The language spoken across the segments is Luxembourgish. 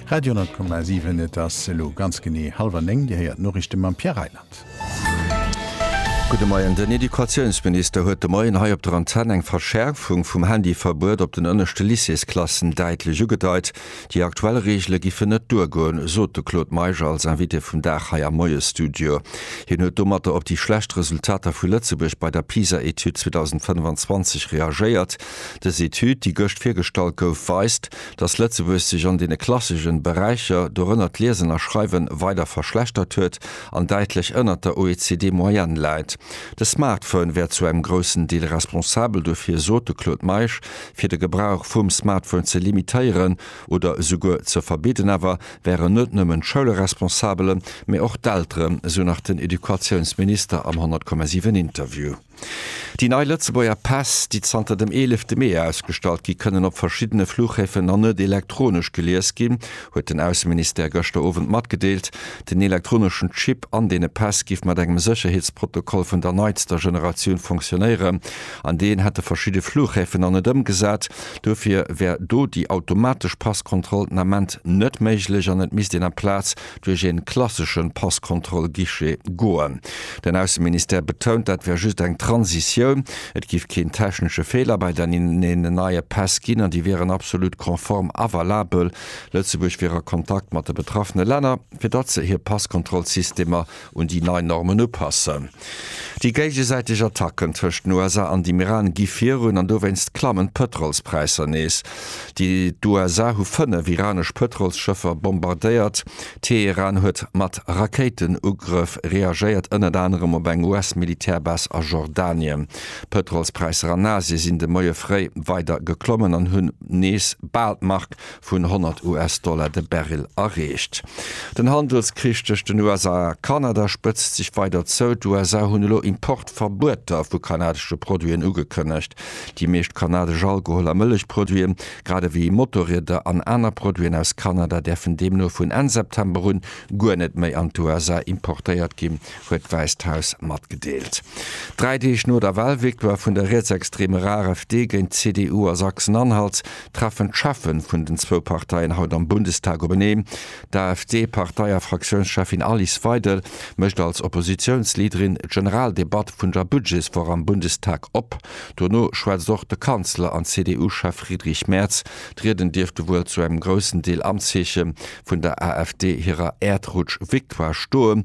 Radio 10,7, Et ass elo ganz genee hallwer néng. Dir héiert d'Noriichte mam Pierre Reyland. Gudde Moien. Den Educatiounsminister huet de Moien hei op der Antenn eng Verschäerfung vum Handyverbuet op den ënneschte Lycéesklassen däitlech ugedeit. Déi aktuell Reegele giffen net duergoen, sot de Claude Meisch als Invité vum Dag hei am Moiesstudio. Hien huet domatter op déi schlecht Resultater vu Lëtzebuerg bei der PISA-Etüd 2025 reagéiert. Dës Etüd, déi gëscht virgestallt gouf, weist, datt Lëtzebuerg sech an deene klassegen Beräicher, dorënner d'Liesen a Schreiwen, weider verschlechtert huet an däitlech ënnert der OECD-Moyenne läit. De Smartphone wär zu engem groussen Deel responsabel dofir, sot de Claude Meisch. Fir de Gebrauch vum Smartphone ze limitéieren oder esouguer ze verbidden awer, wären net nëmmen d'Schoule responsabel, mee och d'Elteren, esou nach den Educatiounsminister am 100,7 Interview. Déi nei Lëtzebuerger Päss, déi zanter dem eelefte Mee ausgestallt ginn, kënnen op verschiddene Fluchhäfen nach net elektronesch gelies ginn, huet den Ausseministère gëschter Owend matgedeelt. Den elektroneschen Chip an deene Päss giff mat engem Sécherheetsprotokoll vun der neitster Generatioun funktionéieren. An deen hätte verschidde Fluchhäfen nach net ëmgesat. Dofir wär do déi automatesch Passkontroll den Ament net méiglech an et misst een amplaz duerch ee klassesche Passkontroll-Guichet goen. Den Ausseministère betount, dat wär just eng Transitioun, et géif keen technesche Feeler bei deenen neie Päss ginn an déi wieren absolut konform a valabel. Lëtzebuerg wier a Kontakt mat de betraffene Länner, fir datt se hir Passkontrollsystemer un déi nei Normen upassen. Déi géigesäiteg Attacken tëscht den USA an dem Iran gi virun an dowéinst klammen d'Pëtrolspräisser nees. D'USA hu fënnef iranesch Pëtrolsschëffer bombardéiert. Teheran huet mat Rakéitenugrëff reagéiert, ënnert anerem op eng US-Militärbase a Jordanien. D'Pëtrolspräisser an Asie sinn de Moie fréi weider geklommen an hunn nees bal d'Mark vun 100 US-Dollar de Barrel erreecht. Den Handelskrich tëscht den USA a Kanada spëtzt sech weider zou. D'USA hunn elo Importverbueter vu kanadesche Produiten ugekënnegt. Déi meescht kanadesch Alkohol a Mëllechproduite, grad ewéi Motorrieder an aner Produiten aus Kanada, däerfen deemno vun Enn September un guer net méi an d'USA importéiert ginn, huet d'Wäisst Haus matgedeelt. Dräi Deeg no der Walvictoire vun der rietsextreemer AfD géint d'CDU a Sachsen-Anhalt, treffen d'Cheffen vun den zwou Parteien haut am Bundestag openeen. D'AfD-Partei a Fraktiounscheffin Alice Weidel mécht als Oppositiounsleaderin d'Generaldebatt vun der Budgetswoch am Bundestag op. Dono schwätzt och de Kanzler an CDU-Chef Friedrich Merz. D'Rieden dierfte wuel zu engem groussen Deel am Zeeche vun der AfD hirer Äerdrutsch-Victoire stoen.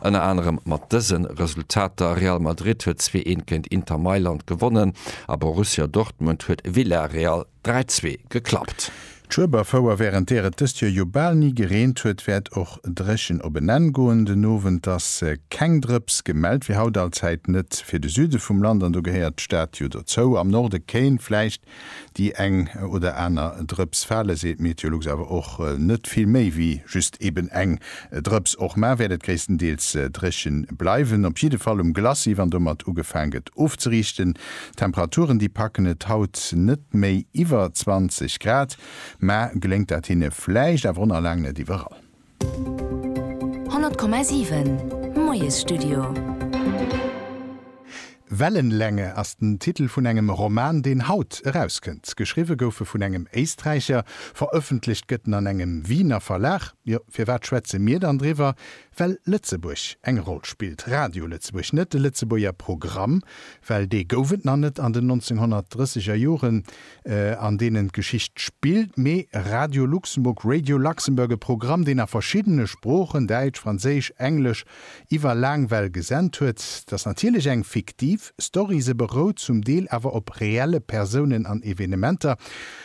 Ënner anerem mat dëse Resultater, Real Madrid huet 2 een géint Inter Mailand gewonnen a Borussia Dortmund huet Villarreal 3 zwee geklappt. D'Schueberfouer, wärend där et dëst Joer jo bal ni gereent huet, wäert och dréchen op en Enn goen den Owend. Ass keng Drëps gemellt, wier haut allzäit net fir de Süde vum Land an do gehéiert d'Stad jo dozou. Am Norde kéint vläicht Déi eng oder aner Drëps fale, seet Meteolux, awer och net vill méi wéi just eben eng Drëps. Och mar wäert et gréisstendeels dréche bleiwen, op jidde Fall um Glacis, wann domat ugefaang gëtt ofzeriichten. D'Temperaturen, déi packen et haut net méi iwwer 20 Grad, mä geléngt dat hinne vläicht, awer och nach laang net iwwerall. 100,7 Moiesstudio. Wellenlänge ass den Titel vun engem Roman, deen haut erauskënnt. Geschriwwe gouf e vun engem Éisträicher, verëffentlecht gëtt en an engem Wiener Verlag. Jo, firwat schwätze mir dann driwwer? Well Lëtzebuerg eng Roll spillt. Radio Lëtzebuerg, net de Lëtzebuerger Programm, well dee gouf et nach net an den 1930er Joren, an deenen d'Geschicht spillt, mee Radio Luxemburg, Radio Luxembourg, e Programm, deen a verschiddene Sproochen, Däitsch, Franséisch, Englesch, iwwer laang Well gesent huet. T'ass natierlech eng fiktiv Story, se berout zum Deel awer op reelle Persounen an Evenementer,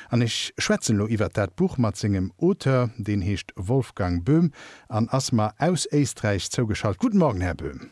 an ech schwätzen elo iwwert dat Buch mat sengem Auteur, deen heescht Wolfgang Böhm an ass mer aus Éisträich zougeschalt. Guten Morgen, Här Böhm.